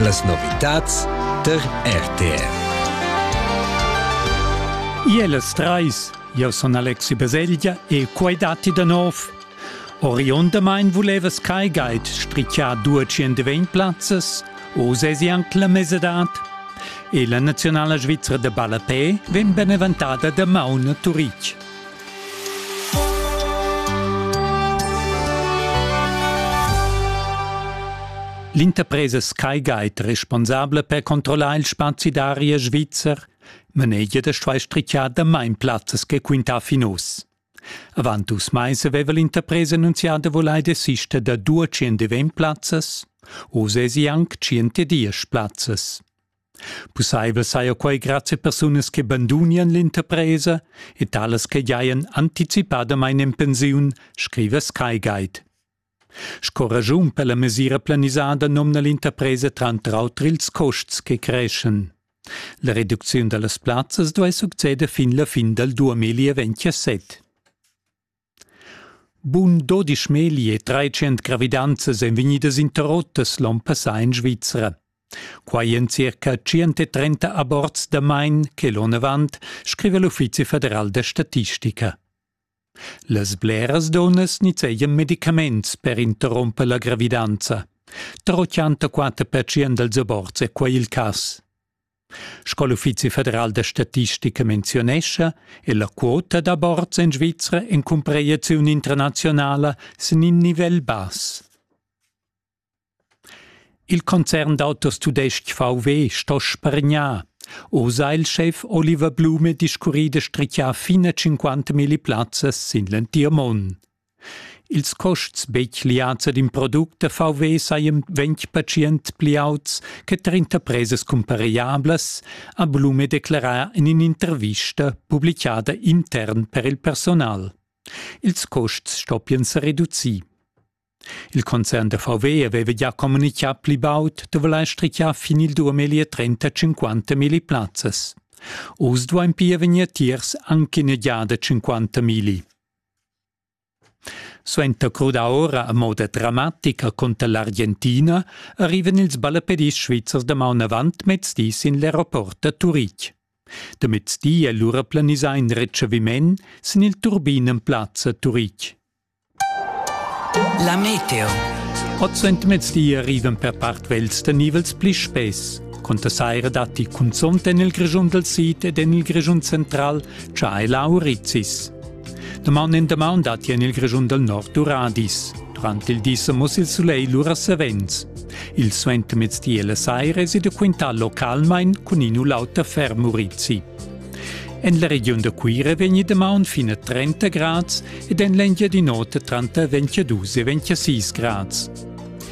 Las novitads tar RTR. Ielas trais, jau sun Alexi Baselgia e quai datti da nov. Oriundamain vulevas Kai Guide strichar due plazzas, o sesi anc la mesadad? E la nazionala svizra da ballapè vegn beneventada da Mauna Turic. L'interpresa Sky Guide responsabla per controllar il spazi d'aria svizzer manegia da stuair strichar damain plazzas che quintà fin uss. Avant dus mais aveva l'interpresa annunzià da vulair desister da 200 plazzas. Oz èsi anc 110 plazzas. Pussaivel saja quai grazie persunas che bandunian l'interpresa e talas che giajan anticipadamain en pensiun, scriva SkyGuide. Sco ragiun per la mesira planisada nomna l'interpresa tranter auter ils custs che creschan. La reducziun da las plazzas duai succeder fin la fin dal 2027. Bun dodisch megli e treicient gravidanzas èn vegnidas interrottas l'onn passà en Svizra. Quai en circa 130 aborts damain che l'onn avant, scriva l'Uffizi federal da statistica. Las bleras dunnas nizzegian medicaments per interromper la gravidanza. Tra 84% dals aborts è quai il cas. Sco l'Uffizi federal da statistica menzionescha, è la quota d'aborts en Svizra en cumpraziun internazionala sin in nivel bass. Il concern d'autos tudestg VW sto spargnar. O sa il chef Oliver Blume discurri de strichar fine 50.000 plazzas sin l'entir mond. Ils custs betg liads ad in product da VW sajan ventg pertschient pli auts che tar interpresas cumparegliablas, ha Blume declerà en in'intervista publichada intern per il personal. Ils custs stoppian sa reducir. Il concern da VW aveva già communitgà pli baud dovra la strichar fin il 2050 milli plazzas. Oz duain pia vegnir tiers anche in egliada 50 milli. Suenter crudar ora a moda dramatica cunter l'Argentina arrivan ils ballapedis svizzers damaun avant mezdi sin l'aeroport da Turitg. Da mezdi è lura planisà in retschaviment sin il turbin en plazza Turitg. La meteo. Oz ent mezdi arrivan per part vels da nivels pli spess. Conta saira datti cunzont en il Grischun dal sid ed en il Grischun central, cha è la Aurizis. Damaun en damaun datti en il Grischun dal nord duradis. Durant il di sa muss il sulegl lura savens. Il suentermezdi e la saira è da quintà localmain cun in u l'auter fermurizi. En la regiun da Cuira vegni damaun fino a 30 grads ed en l'Engiadin'Ota tranter 22 e 26 grads.